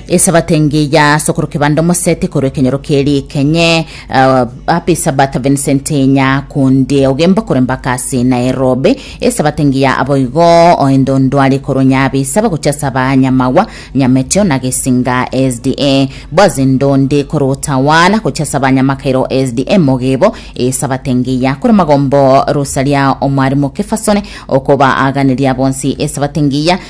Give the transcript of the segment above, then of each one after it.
Esabato engiya ya sokoro kebanda omosete korwa ekenyoro kerikenye uh, apa esabato Vincent enya kunde ogemba kore mbaka ase Nairobi esabato engiya aboigo oende ondwari korwa nyabisa bagocha saba nyamagwa nyameteo na gesinga SDA bwaze ndonde korwa otawana gocha saba nyamakairo SDA mogebo esabato engiya kore magombo rosaria omwarimu kefasone okoba aganiria bonsi esabato engiya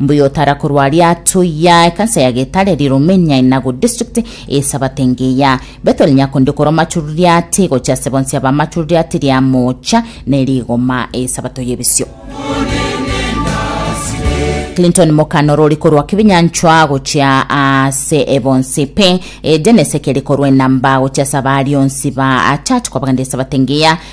Mbuya otara korwa aria atoiya ekansa ya getare ri Romania Inago district eSabato engiya. Beto rinya konde korwa Machururiati gochia ase bonsi aba Machururiati ria mocha ne rigoma eSabato yebisio. Clinton Mokano rori korwa Kibinyanchwa gochia ase ebonsi pe Geneseke rikorwa enamba gochia ase abari onsi ba church kwabagenda eSabato engiya.